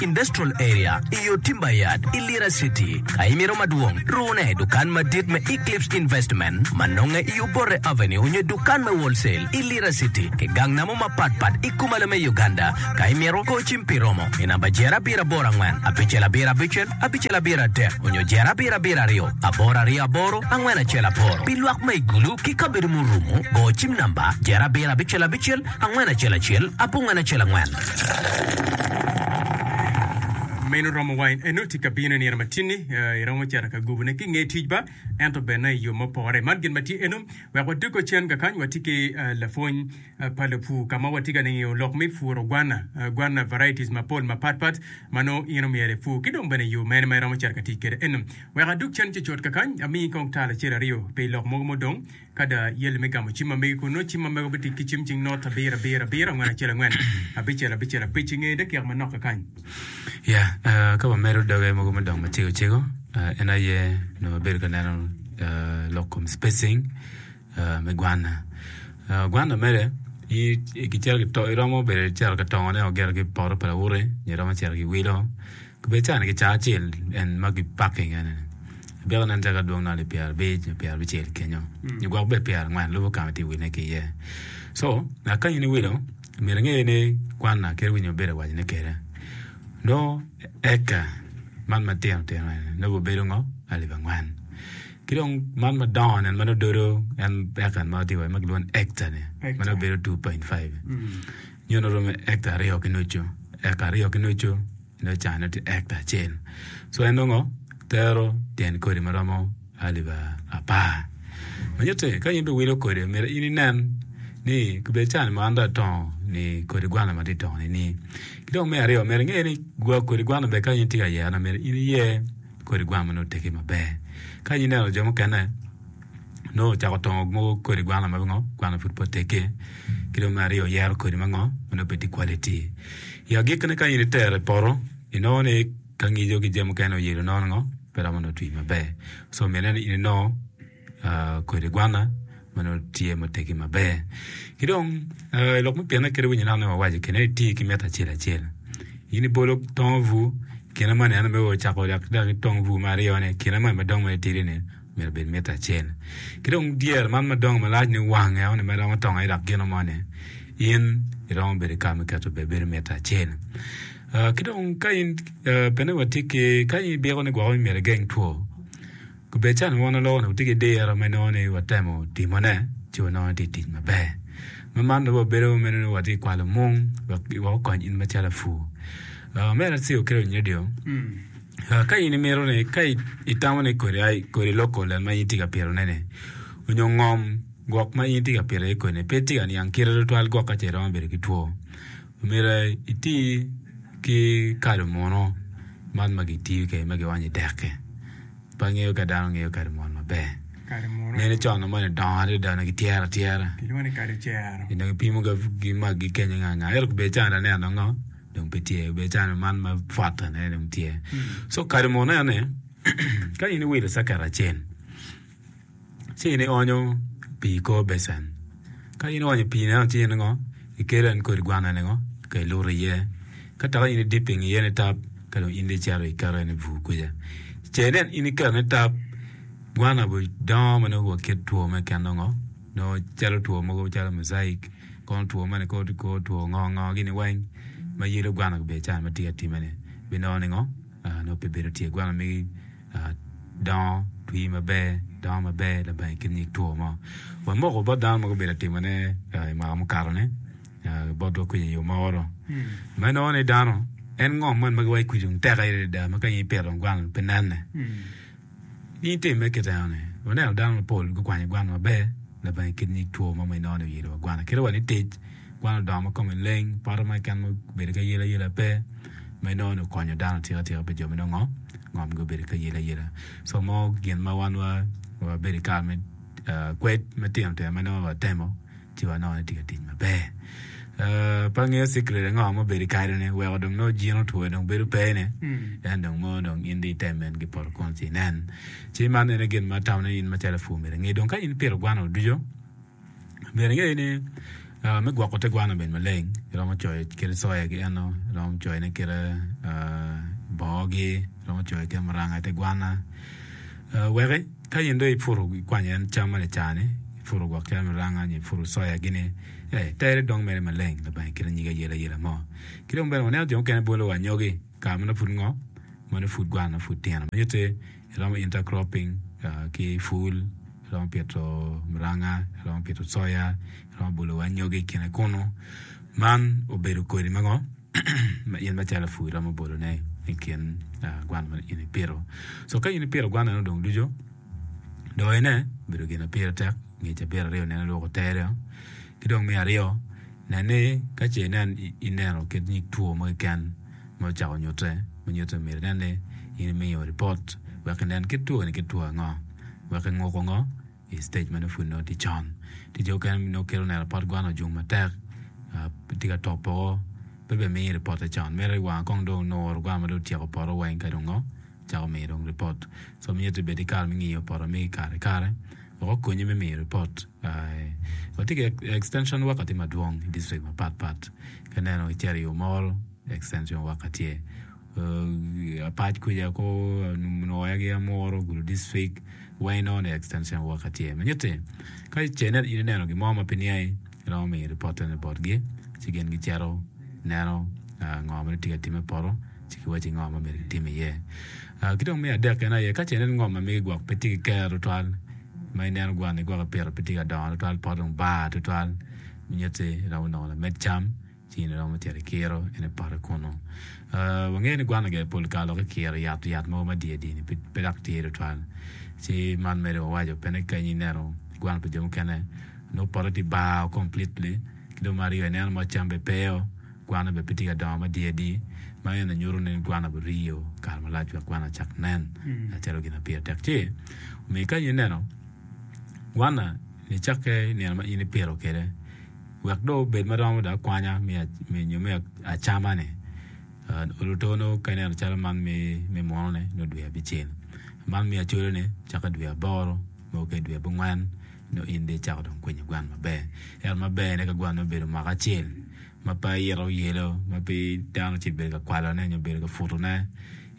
Industrial Area, i yo Timber Yard i Lira City. Ka imito madwong, rune dukan madit me Eclipse Investment ma nonge i Obote Avenue onyo dukan me Wholesale i Lira City ki gang namo mapat pat i Kumalo me Uganda. Ka imito, go cim pi romo i namba jero abiro aboro angwen, abicel abiro abicel, abicel abiro adek onyo jero abiro abiro aryo, aboro aryo aboro, angwen acel aboro. Pi lwak ma i Gulu ki kabedo murumo, go cim namba jero abiro abicel abicel. Angwen acel acel, apungwen acel angwen. Meno romo wa in eno, tika bino i nino matinni? Iromo cito ka gubune ki nge tic ba, ento bene i yo ma pore. Man gin ma tye eno, wek wadoggo cen ka kany, watye ki lapwony pa lapur ka ma watye ka ningo lok me puro gwanna, gwanna varieties mapol mapat pat ma nongo in omyero ipur, ki dong bene yo mene ma iromo cito ka tic kwede eno. Wek adog cen cucut ka kany, amiyi kong tal acel aryo pi lok mogo ma odong. Ka da yali me gamo cim ma megi kun nongo cim ma mego bitit ki cim cing not abiro abiro abiro angwen acel angwen abicel abicel abic i nge dakika manok kekany. Ya, ka wamedo doge mogo me dong macego cego, en aye nongo wabedo ka neno lok kom spacing me gwanna. Gwanna mere gicito iromo bedo cito ka tongone o gito ki poto pa lawote nyo iromo cito ki wilo. Kibed cani ki caa acel en ma ki paki kene ni, Abiko nen caka dwong noli pyera abic nyo pyera abicel kenyo, nyo gwok bed pyera angwen lubo ka ma tye wine ki iye. So, ngat kany ni wilo, myero inge ni kwanna kit winyo mabedo awaco ne kede. Nongo eka man ma tino tino eni nongo bino bedo ngo? Alip angwen. Ki dong man ma dongo ni ma nongo dodo en eka ma watye kwede ma kilwongo ni ecta ni ma nongo bedo two point five. Nyono oromo ekta aryo ki nucu, ekta aryo ki nucu nongo can nongo tye ekta acel so en nongo tero tyen kodi ma romo alip apar ma nyutti ka in dong iwilo kodi myero in inen ni bed can mo an dong atongo ni kodi gwana ma atye ka tongoni ni ki dong me aryo myero inge ni kodi gwana bene ka in itye ka yerone myero in iyer kodi gwan ma nongo otegi maber ka ineno jo mukene nongo ocako tongo mogo kodi gwano ma pingo gwano pud pe oteggi ki dong me aryo oyero kodi ma ngo ma nongo pe tye quality i agikki ne ka in itero i poto inongo ni ka angico ki jami mukene oyelo nongo ni ngo pe romo nongo twi maber so mine ni in inongo kodi gwana ma nongo tye ma oteggi maber ki dong lok me pine kadi winyi inaka ma wawaco kine ni iti ki mita acel acel in ibolo tongo bur kine moni ento me o cako dok itong bur me aryo ni kine moni madongo ma itidi ni myero obed mita acel. Ki dong dyere man ma dongo malac ni wang eno ni ma iromo tongo aye dok gino moni, in iromo bedo ki kare me keto bene bedo mita acel. Ki dong ka in bene watye ki ka in ibiko ni gwoko ni myero igeng two, kubedo calo wan loko ni watye ki diro ma inongo ni watemo timone ci wanongo ni tye ka tic maber. Ma man dong wabedo ma meno ni watye ka kwalo mung wek okony in macalo lapur. Mere ci okello nyo dyo. Ka in imito ni, ka itamo ni kodi aye kodi loko lem ma in itye ka pitone-ni, onyo ngom gwok ma in itye ka pito iye kodi-ni pe tye ka niang kite tutwal gwok ka ce iromo bedo ki two, omyero iti ki kado muno man ma kitiyo kede ma kiwanyo i dek-ki. Pe angeyo ka dano ngeyo kado muno maber. Nene con-nu moni dongo adada, onongo kityero atyera. Onongo kipimo ki maggi kenyo nga nga. Ento kobedi calo an aneno-ni, dong pe tye be cano man ma pwota ne dong tye so kadi mo neno ne ka in iwilo caket acel ci in ionyo pii i kor becen ka in ionyo pii neno ci in ngo ikelo en kodi gwana ni ngo ka iluto iye ka dok in idip pinge iye ni tap ka dong in dong icito iketo en i bur kwica ce nen in iketo ne tap gwana bene dongo ma nongo wa kit two me keno ngo nongo calo two mogo calo mujaic kono two moni kor two ngo ngo gini weng ma yelo gwana bene ca ma tye ka timane binongo ningo nongo pe bedo tye gwana magi dongo twi maber dongo maber laba i kin nyig two mo wek moko bot dano ma gubedo ka timone i mwaka mukatone bot dog kwija i yo mogo dong ma inongo ni dano en ngom moni ma giwaco kwija dong tek aye adada ma ka in ipito dong gwana dong pe nene. Niing tim me kit eno-ni, waneno dano mapol gukwanyo gwan maber labongo i kit nyig two ma meno ni oyelowa gwan. Akita wa ni tic gwan odongo ma kome leng, poto ma keken obedo ki ayelayela pe. Meno ni okonyo dano atika atika pi jo ma nongo ngomgi obedo ki ayelayela. So mo gin ma wan wabedo i kare me kwed matino tino ma nongo watemo. ci wanongo ni tye ka tic maber. Pe angeyo cikret ango ma obedo i kareni weko dong nongo jin otwo dong bedo pe ne en dong mono dong in dong ite men ki poto kunu ci inen ci man ene gin ma atamo ni in macalo lapur myero inge dong ka in ipito gwanno ducu myero inge ni me gwoko te gwanno bene maleng iromo coyo kite coya ki eno iromo coyo ne kite bongo gi iromo coyo kite muranga ite gwanna weki Ka in dong ipuro ikwanyo en cam ma lacar-ni, ipuro gwok cam me ranga nyo ipuro coya-gini, ee, tere dong mere maleng Lubanga i kite nyige ayelayela mo. Ki dong bene waneno jo mukene bolo wa anyogi i kare ma nongo pud ngok, ma nongo pud gwana nongo pud tino. Ma nyutte, iromo intercropping ki pul, iromo pito muranga, iromo pito coya, iromo bolo wa anyogi i kine kunu. Man obedo kodi ma ngo? ma in macalo pur iromo bolone i kin gwan ma in ipito. So ka in ipito gwan eno dong ducu, doyone obedo gin ma pire tek, ngec abiro aryo nene lwoko tere-o. Ki dong me aryo, nen ni ka ce inen ineno kit nyig two mo keken ma ocako nyutte, ma nyutte myero inen ni in imiyo ripot wek inen kit twoni kit two ango wek inguko ngo. I stage ma nongo pud nongo tye con, tye jo mukene ma nongo kelo neno pot gwana ojung matek, tye ka top poko, pe bene miyo ripotte con. Meno i wanga kong dong onuro gwana ma dong otyeko poto weng ka dong ngo cako miyo dong ripot. So miti ni bed ki kare me ngiyo poto migi i kare ki kare wek okonyi me miyo ripot. Watye ki extension worker tye madwong i district mapat pat, ka ineno icito i Omoro extension worker tye. apac kwija ko onongo oya ki amuru ogudo district why not the extension worker tye manyit ni ka ce ni in ineno gin mo ma pe niangi iromo miyo report eno botgi ci gin gicito neno ngo ma nongo tye ka timme i poto ci giwacci ngo ma myero kitim iye ki dong me adek kene aye ka ce ineno ni ngom ma migi gwok pe tye ki kero tutwal ma ineno gwa ni gwok ipito pe tye ka dongo tutwal pote dong bar tutwal nyutti iromo nongo lamed cam Cing ni romo tito i kiro en aye pote kunu. Wangeyo ni gwan oger pol kare loki kiro i ato yat mogo ma diye diye ni pe dok tye tutwal. Ci man medo wawaco pene kany ineno i gwan pa jo mukene nongo pote tye bar o completely. Ki dong me aryo ineno moc cam bene pe o, gwan-na bene pe tye ka dongo ma diye diye. Ma eni nyuto ni gwan-na obin riyo kare malac wek gwan-na ocak nen calo gin ma pire tek. Ci omiyo kany ineno gwan-na nicakke i nino ma in ipito kwede. Wek dong obed ma romo dok kwanya me nyo me acama-ni, oluto nongo ka ineno calo man me munu-ni nongo dwe abicel, man me acoloni cako i dwe aboro nongo ka i dwe abongwen nongo in dong icako dong kwinyo gwan maber. Ento ma berne ka gwan-ni obedo mwaka acel ma pe ite oyelo ma pe dano ocito bedo ka kwalone nyo bedo ka putone,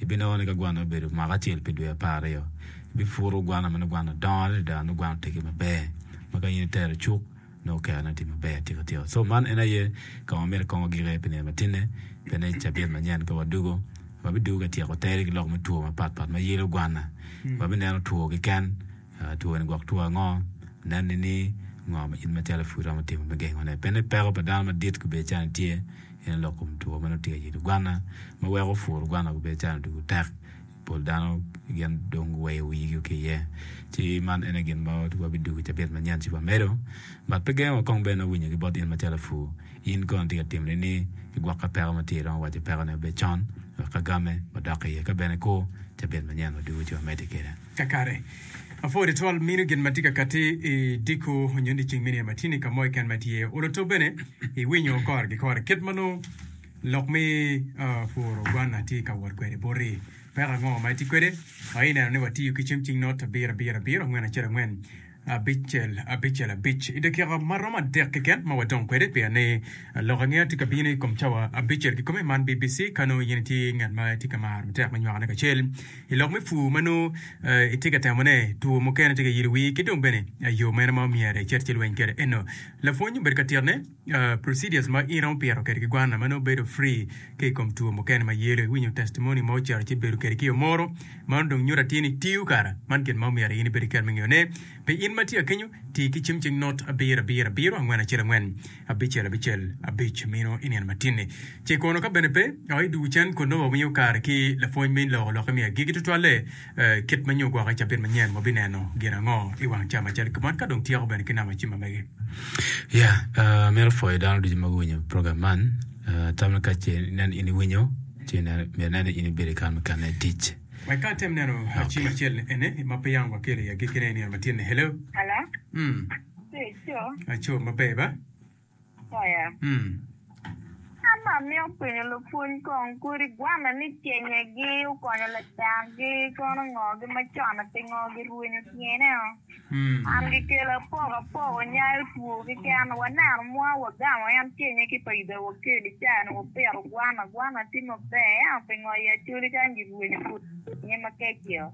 ibinongo ni ka gwan-ni obedo mwaka acel pi dwe apar aryo, ibiputo gwan-ni ma nongo gwan-ni odongo adada nongo gwan-ni otegi maber ma ka in itero icuk nongo kare ne tye maber atika tika so man en aye ka ma myero ekong wagik iye pi nino matine pe ni cabit manyen pe wadwogo wabidugo ka tyeko tere ki lok me two mapat pat ma yelo gwana wabineno two keken two ni gwok two ango nen nini ngo ma in macalo pud iromo timo me gengo ne pe ni peko pa dano madit kubedo calo nitye en aye lok kom two ma nongo tye ka yelo gwana ma weko puro gwana kubedo calo dong tek. Pol dano gin dong guweyo wigi ki iye, ci man en aye gin ma wa biduku i cabit manyen ci wamedo. Ngat pe gengo wa kong bene nongo winyo ki bot in macalo apur. In kono itye ka timo nini? Igwok ka peko ma tye iromo waco pekone wa bed con wek ka game wadok iye ka bene kur cabit manyen waduku ci wamedde kwede. Kakare, apur tutwal mino gin ma tye ka katti i diko nyo ni ceng meno aye matino i ka mo keken ma itye iye. Olo to bene iwinyo kore ki kore kit ma nongo Lok me puro gwan atye ka wot kwede boti, peko ango ma itye kwede? Aye ineno ni watiyo ki cem cing not abiro abiro abiro, angwen acel angwen, abicel abicel abic i dakika ma romo adek keken ma wadong kwede, pien ni lok angeya tye ka bino i kom cawa abicel kikome. Man BBC ka nongo in itye ngat ma itye ka maro matek me nywakone kacel i lok me pur ma nongo itye ka temone, two mukene tye ka yilo wii ki dong bene yo mene ma omyero icit ci ilweny kwede eno. Lapwony obedo ka titne. Procedures ma in opito kede ki gwanna ma nongo bedo free ka ikom two mukene ma yelo iwinyo testimony mo ocito ci ibedo kede ki o moro mano dong nyuto atir ni tiyo kara man gin ma omyero in ibedo kede me ngeyo ne pi in ma tye akenyo ti ki cim cing not abiro abiro abiro angwen acel angwen abicel abicel abic mino inino matinni ci kono ka bene pe o idwogo cen kono wa miyo kare ki lapwony me loko lokke me agigi tutwalle Kit ma nyo gwoko i cabit manyen wabineno gin ango i wang ca macalo kibon ka dong tyeko bene ki namo acima mege? Ya, amito pwoyo dano ducu ma guwinyo program man. Tammi ka ce ineno in iwinyo, ci ineno myero ineno ni in ibedo i kare mukene i tic. Wek ka atem neno acim acel ni ene ma pe yang wakelo i agikine i nino matini. Hello. Hello. Mm. Aco. Aco maber ba? Apoya. An ma amito penyo lupwony kong, Kodi igwanne ni cenyegi okonyo ladakgi kono ngogi macon-ni pingo girwenyo tyene-o? An gikelo apoko apoko nyayo two keken. Waneno mwa wagamo en cennye ki pa Yuda Wakel i cawa-ni wapito gwan agwana tye maber ento pingo i Acholi kany girwenyo pud tyene makeccio?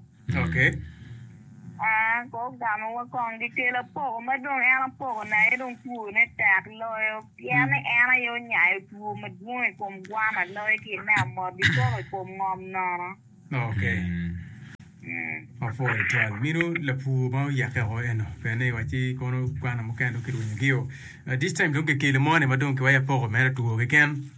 gugamowa kong gikelo apoko ma dong en apoko na aye dong two ne tek loyo pien ni en aye onyayo two madwong i kom gwana loyo ki me amot gikoko i kom ngom nono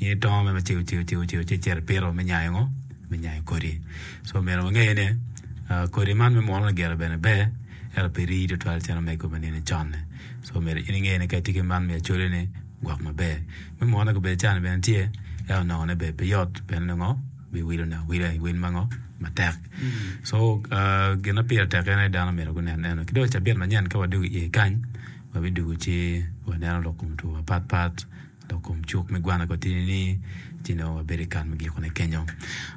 In itongo me cego cego cego cego ci icito ipito me nyayo ngo me nyayo kodi so omyero wange ni kodi man me munu lagiro bene ber ento pe rii tutwal calo omego me nino coni so omyero in inge ni ka itye ki man me acholi ni gwok maber me munu bene can bene tye ento nongo ne bene pe yot pien ni ngo biwilo ne awila i wil ma ngo matek so gin ma pire tek en aye dano myero gunen eno ki dong i cabit manyen ka wadwogo iye kany wabidugu ci waneno lok kom two mapat pat Dok kom cuk me gwana kong tye ni ci nongo wabedo i kare me gikone kenyo.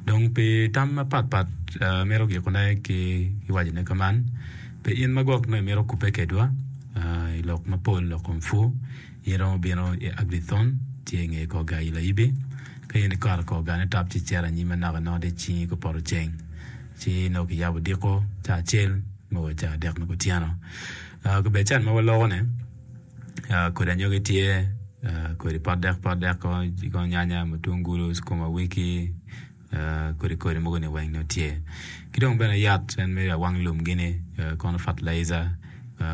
Dong pi tam mapatpat amito gikone ki wacone ka man, Pe in magwok nongo imito kubbe kedwa i lok mapol lok kom pwu, in iromo bino i Agithon ci inge kor gar Ilayibi. Ka in ikato i kor gar Netap ci icito anyim anaka inongo tye cingi ka poto ceng, ci nongo kiyabo odiko ca acel me o ca adek me kutyeno. Kabedo can ma walokone. Kodi anyogi tye, kodi pot dek pot dek kong ci kong nyanya, mutungulu, cukuma wiki kodi kodi mogo ni weng dong tye ki dong bene yat en mere awang lum gini kono fatalaija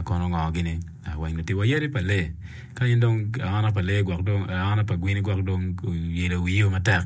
kono ngo gini weng dong tye wa yadi pa lee ka in dong aona pa lee gwok dong aona pa gweni gwok dong oyelo wiyi o matek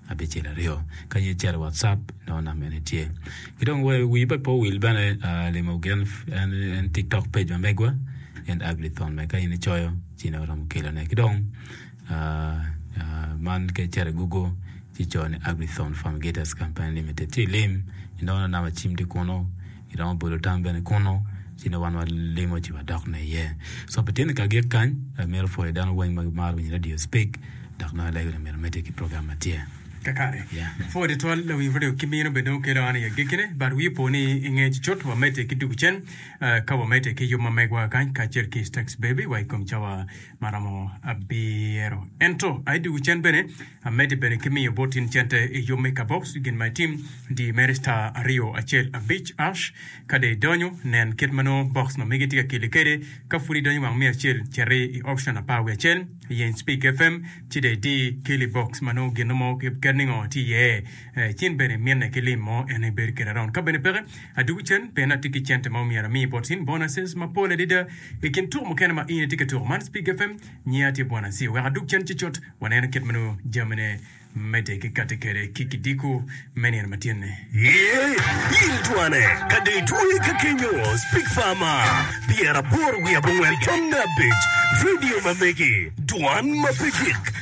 abicel aryo ka ye calo watcap nongo nama en tye ki dong wi pe owil bene limo gin en tiktok page ma megwa en Ablython bene ka in icoyo ci nongo iromo kelone ki dong man ka iceto i gugo ci coyo ni Ablython Farm Gators Company Limited ci ilim inongo nongo nama cim tye kunu. Giromo bolo tam bene kunnu, ci nongo wan walimo ci wadok ne iye. So pi tyene kagik kany, amito pwoyo dano weng ma gimaro winyo radio Speak dok nongo alego ni omyero omedde ki program ma tye. Kakare. Yeah. Pwoyo twatwal lawiny radio ki mino bene dong kelo an i agikkine, but wi opo ni i nge cucut wamedde ki dugu cen, ah, ka wamedde ki yub ma megwa kany kacel ki Stax Baby wa i kom cawa ma romo abiro. Ento, aye dye wi cen bene, amedde bene ki miyo bot in cente i yub me kaboox gin ma itim, di mere star aryo acel abic ash. Ka dong idonyo, nen kit ma nongo box ma megi tye ka keli kwede. Ka pud idonyo wang miya acel, citi i option apar wiye acel, yeny Speak FM, ci dong idi keli box ma nongo gin mo kit ningo tye iye. Ci in bene iminne ki lim mo, en aye bedo kede around. Ka bene peke, Adwogi cen pien atye ki cente ma omyero ami bot in bonuses mapol adada. I kin tuko mukene ma in itye ka tuko man Spig FM, nyinga tye Bwana Asio. Wek adwog cen ci cut waneno kit ma nongo jamine medde ki kati kwede ki kidiko me nino ma tyenni. Iye, il twane ka dong itweye ka kenyo, Spig Fama, Pyera aboro wiye abongwen tamne abic, Radio ma megi, Dwan ma pe gik.